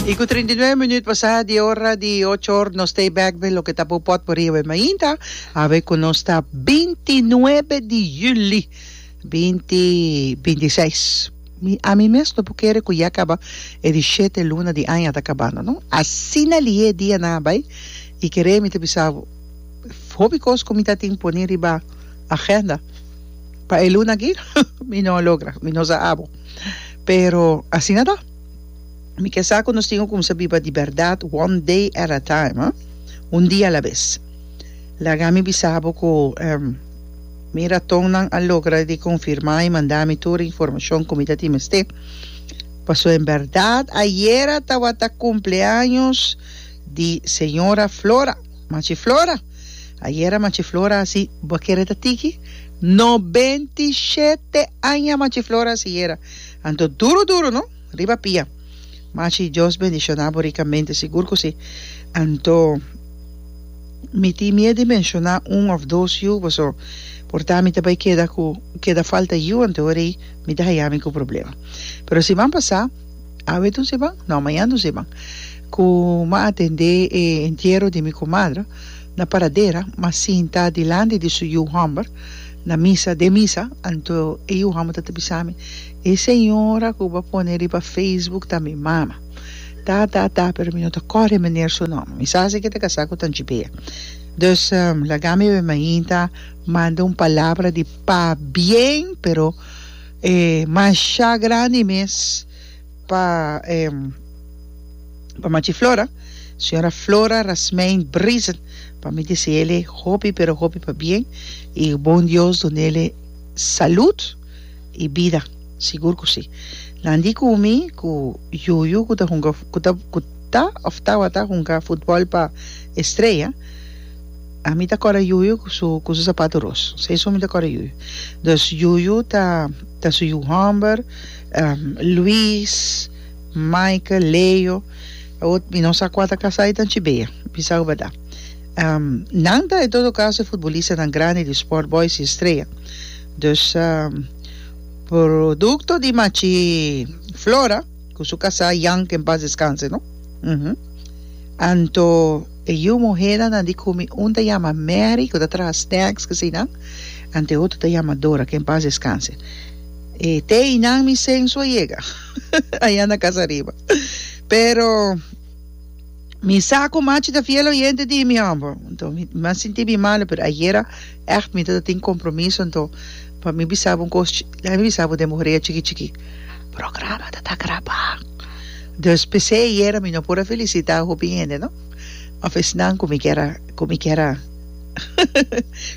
Y cu treinta y nueve minuut pasá di ora di ocho or nos stay back be loke ta por pot por riba e mainta. Awe cu nos ta binti nuebe di juli binti binti seis. Mi a mi mes no por kere cu ya caba e di shete luna di aña ta cabando no. Asina liye e dianan a bay y kere mi ta bisa hopi cos cu mi ta tin poni riba agenda pa e luna aki mi no a logra mi no sa abo. Pero asina ta. Mi ke sa ku nos tin ku kumsa biba di bèrdat one day at a time, ah. Un dia alabes. Laga mi bisa bo ku ehm mi ratonnan a logra di konfirmá i manda mi tur informashon ku mi ta tin mester. Pasó en bèrdat ayera tabata kumpleaños di señora Flora, Machi Flora. Ayera Machiflora a si, Bo a kere ta tiki? No benti shete aña Machiflora a si yera. Anto duru duru no! Riba pia! Machi, Dios bendishona bo rikamente, sigur ku si. Anto mi tin mie di menshoná un òf dos yu boso, por ta mi ta bai keda ku keda falta yu, anto hora'i mi ta haya mi ku problema. Pero siman pasá. Awe do seban? No, mañan do seban. Cu m'a atendé e entiero di mi comadre na paradera, m'a sinta dilanti di su yu homber na misa, den misa, anto e yu homber ta ta bisa mi, E señora cu bo a pone riba Facebook ta mi mama. Ta, ta, ta, pero mi no ta core e meneer su nomber. Mi sa si ki e ta casá cu Tanchi Bea. Dus, laga mi bai mainta, manda un palabra di pabien, pero. E masha grandi mes pa e pa machi Flora, señora Flora Rasmein Brisen, pa mi deseele hopi pero hopi pa bien y bon Dios dunele salud y bida, sigur cu si. Nan di cu mi cu Yuyu cu ta hunga cu ta cu ta of tabata hunga futbol pa Estrella, A mi ta kòrda Yuyu ku su ku su sapatu ros. Se esun mi ta kòrda Yuyu. Dòs Yuyu ta ta su yu hòmber, Luis, Michael, Leo. Awo mi no sa kua ta kasá i ta anchi bea. Bisa ku bardad. Nan ta en todo kaso e futbolistanan grandi di Sport Boys i Estrella. Dus produkto di machi Flora ku su kasá Jan, ke en pas deskanse no. Anto E yu muhénan nan di kumi un ta yama Mary ku ta traha snacks k'esei nan an te otro ta yama Dora ke en pas deskanse e te einan mi sensu a yega ayan na kasa riba pero mi sa ku machi ta fiel oyente di mi homber nto mi a sinti mi malo pero ayera Echt mi ta ta tin compromiso anto pa mi bisa bo un cos chi deja mi bisa bo den bo horea chiki chiki programa ta ta graba dus pc ayera mi no por a felicita hopi hende no of esnan cu mi kier a cu mi kier a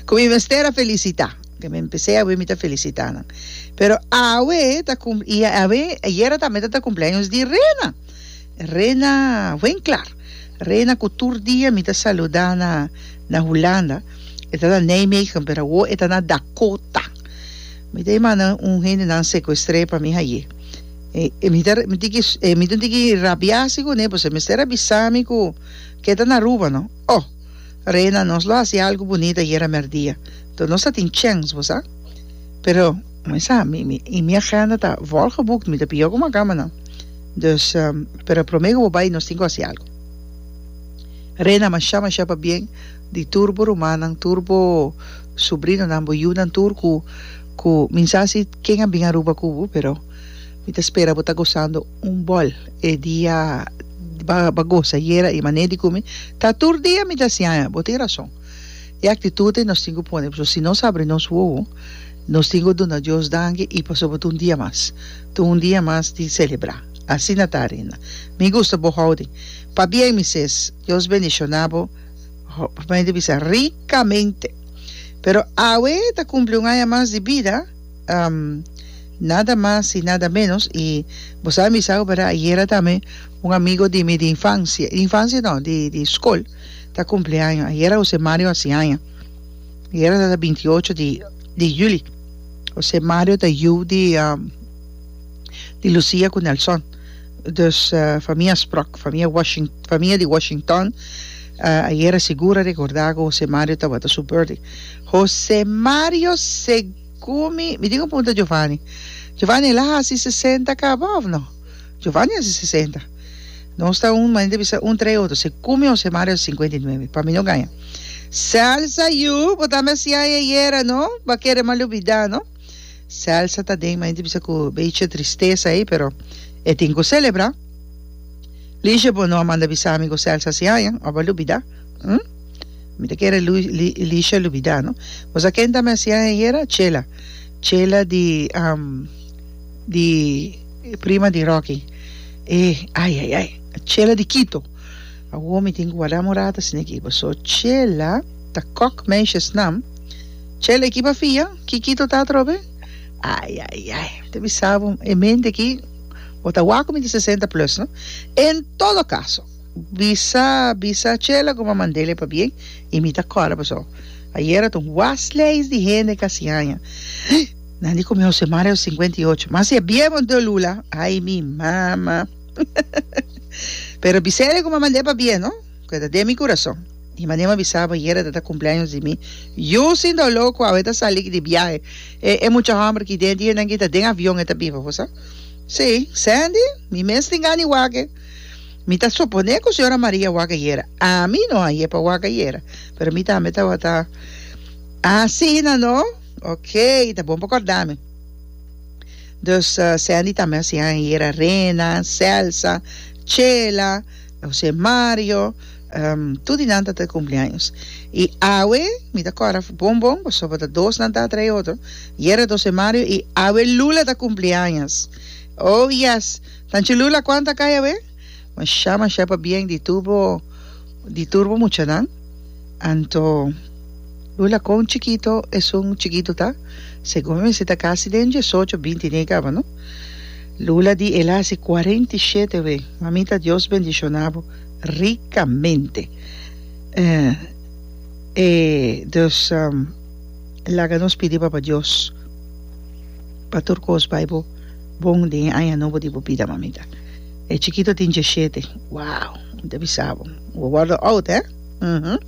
cu mi mester a felicita den mi pc awe mi ta felicita nan pero awe ta cum y awe ayera tambe ta ta cumpleaños di Rena. Rena wen klar. Rena ku tur dia mi ta saluda na na Hulanda. E ta na Nijmegen, pero awo e ta na Dakota. Mi ta manda un hendenan secuestré pa mi haye. E, e mi ta mi tiki e mi tun tiki rabiasi ku ne, pues e mester a bisa mi ku ke ta na Aruba no. Oh, Rena nos lo hasi algu bunita yera merdia. Enton nos ta tin chèns, bo sa. Pero Mi sa, y mi agenda ta volgeboekt, mi ta pia como a cama nan. Dus, pero prome cu bo bay nos tin cu haci algo. Rena, Masha, masha pa bien di tur bo rumannan, tur bo sobrinonan, bo yiunan tur cu, cu mi sa si ken a bin Aruba cu bo, pero mi ta spera bo ta gozando un bol e dia, ba, ba goza yera y manera di cu mi ta tur dia mi ta siaña, bo tin razon. E aktitut ei nos tin ku pone pasobra si nos abri nos wowo nos tin ku duna Dios danki i pasobra ta un dia mas ta un dia mas di selebrá asina ta Arinda mi gusta bo houding pabia mi ses Dios bendishoná bo p'amén bisa rikamente pero awe ta kumpli un aña mas di bida nada mas i nada menos i bo sabe mi sa operá ayera tambe un amigo di mi di infansia infansia no di di skol. ta cumpli aña. Ayera José Mario a haci aña. Ayera tata binti ocho di, di juli. José Mario ta yu di, um, di Lucía cu Nelson. Dus, uh, famia Sprock, famia Washing, famia di Washington, uh, ayera sigur a recorda cu José Mario tabata su birthday. José Mario segun mi, mi tin un punta Giovanni. Giovanni, el a haci sesenta caba of no? Giovanni hasi sesenta. Nos ta un, manera di bisa un tra e otro. Si cu mi Jose Mario hasi cincuenta y nuebe. Pa mi no gaña. Celsa, Yu, bo tambe hasiaye ayera, no? Bo a kere mal olbida, no? Celsa ta den, manera di bisa cu beychi tristesa ey, pero e tin cu celebra. Ligia, Bo no a manda bisa mi cu Celsa hasi aña? Ora bo a lubida? Hm? Mi ta kere Ligia lubida, no? Bo sa ken tambe hasi aña ayera? Chela. Chela di, am. Di prima di Rocky. E ay ay ay Chela di Quito. Awo mi tin cu guarda morata sin equipo so Chela ta kok meisje snam Chela equipo a fia ki Quito ta atrobe ay ay ay ta bisa bo e mente aki bo ta wak cu mi ta sesenta plus no en todo caso bisa bisa Chela como a mandele pa bien y mi ta corda paso ayer a ta un was lijst di hende casi anja. Nan di come Jose Mario cincuenta y ocho mas e bie bo do lula ay mi mama pero bisa ere cu mama de pa bie no cu ta den mi curason y mane mi a bisa bo yere ta ta cumpleaños di mi yo sin do loco awe ta sali di biahe e e mucha homber ki den di hendenan ki ta den avion e ta biba bo sa si sandy mi mes tin gana di wak mi ta supone cu señora Maria a wak ayera ami no a yep a wak ayera pero mi tambe tawata asi nan no Ok, ta bon pa corda mi. Dus uh, Sandy ta mes ya en hier Arena, Celsa, Chela, José Mario, um, tu di nan ta te cumpleaños. Y awe, mi ta cora bon bon, paso pa ta dos nan ta atra e otro. Hier José Mario y awe Lula ta cumpleaños. Oh yes, tanchi Lula cuanta caya we? Mashá mashá pabién di tur bo di tur bo muchanan. Anto Lula kon chikito esun chikito ta? Segun mi mester ta kasi den diesocho binti n'e kaba no. Lula di el a hasi kuarenta i shete we. Mamita Dios bendishoná bo rikamente. E dus laga nos pidi Papa Dios pa tur kos bai bo. Bon den e aña nobo di bo bida, mamita. E chikito tin diashete. Wow! Mi ta bisa bo, bo wòrdu oud, hè? Uhum.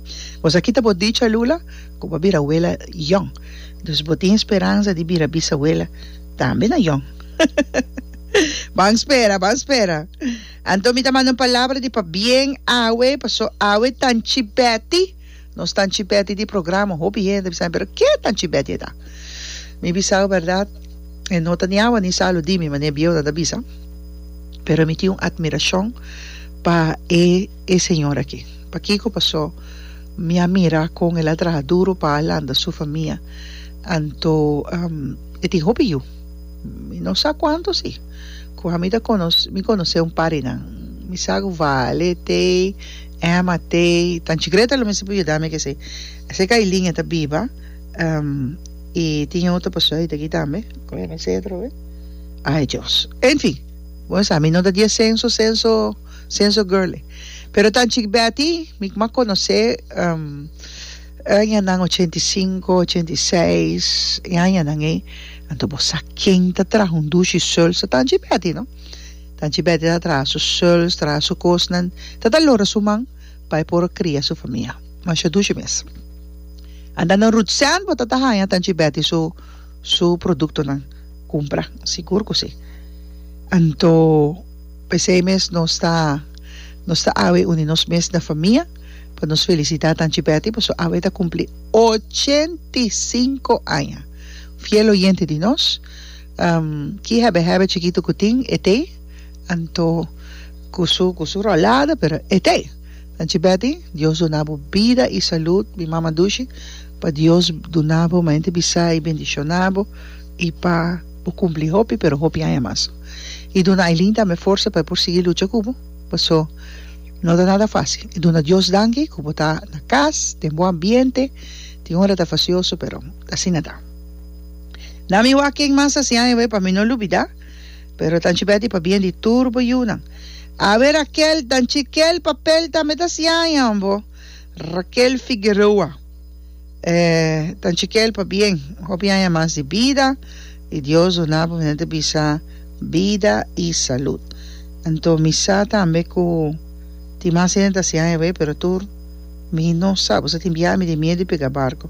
Bos a kita bo dicha, Lula, ku bo a bira wela yòn. Dus bo tin speransa di bira bisawela tambe na yòn. Ban spera, ban spera. Anto mi ta manda un palabra di pabien awe, paso awe tanchi Beti. Nos ta chibeti di programa, hopi hende a bisabi, pero ke ta chibeti eta? Mi bisau berdad, e no ta ni awa ni salu di mi, mane bieunan ta bisa, pero mi tin un admiracion pa e e señor aki. Pakiko? Paso mi a mira kon el a traha duro pa a lanta su famia, anto e tin hopi yu, mi no sa kuantu si, ku ami ta kono mi konos'é un par di nan, mi sa ku vale, tei. Emma, Tei, tan chigreta lo mester pa yuda mi ke si. Esei ku Aileen e ta biba, i tin e otro pasobra hita aki tambe. Ku hende esei atrobe? Ai Dios. Enfin, bo sa mi no ta di e senso senso senso girl e. Pero tan chik Betty mi kuma konos'é añanan ochenta i sinku, ochenta i seis, e añanan ei, anto bo sa ken ta traha un dushi sulsa tan chik Betty no. Tanchi Betty ta traha su suls, traha su kosnan, ta dalora su man pa e por kria su famia. Masha dushi mes. Anda na Ruth Sand bo ta ta haña Tanchi Betty su su produktonan kumpra. Sigur ku si. Anto p'esei mes nos ta nos ta awe uni nos mes na famia pa nos felisitá Tanchi Betty paso awe ta kumpli ochenta i sinku aña. Fiel oyente di nos. Ki hèbè hèbè chikitu ku tin e te anto ku su ku su rolada pero e te anchi Betty Dios duna bo bida i salud mi mama dushi pa Dios duna bo mañanti bisa i bendishona bo i pa bo kumpli hopi pero hopi aña mas i duna Ailin tambe forsa pa e por sigui lucha ku bo paso no ta nada fasil i duna Dios danki ku bo ta na kas den bon ambiente tin ora ta fasioso pero asina ta. Na mi wak ken mas a siña ewe pa mi no lubida, pero ta anchi beti pa bien di tur bo yunan. A wer Raquel, ta anchi kel papel tambe ta siñañan bo. Raquel Figueroa, E ta anchi kel pa bien, hopi aña mas di bida y Dios duna bo, mi ta bisa bida y salud. Anto mi sa tambe cu tin mas hende ta siña ewe, pero tur mi no sa, bo sa tin biaha mi tin miedu di pega barco.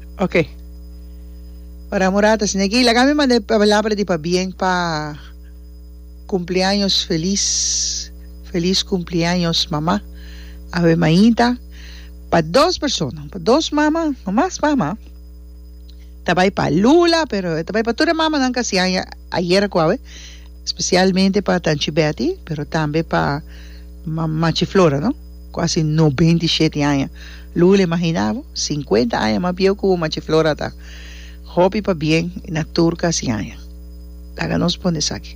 Oke. Ora murata si negi laga mi manda e palabra di pabien pa kumpliaños felis, felis kumpliaños mama, awe mainta, pa dos persona, pa dos mama, pa mas mama, ta bai pa Lula pero e ta bai pa tur e mamanan kasi aña ayer aku awe, spesialmente pa Tanchi Betty pero tambe pa Machi Flora no. Kuasi nobenta i sheti aña. Luis le mahiná bo, sinkuenta aña mas bieu ku bo machi Flora ta. Hopi pa bien i na tur kasi aña. Laga nos pone esaki.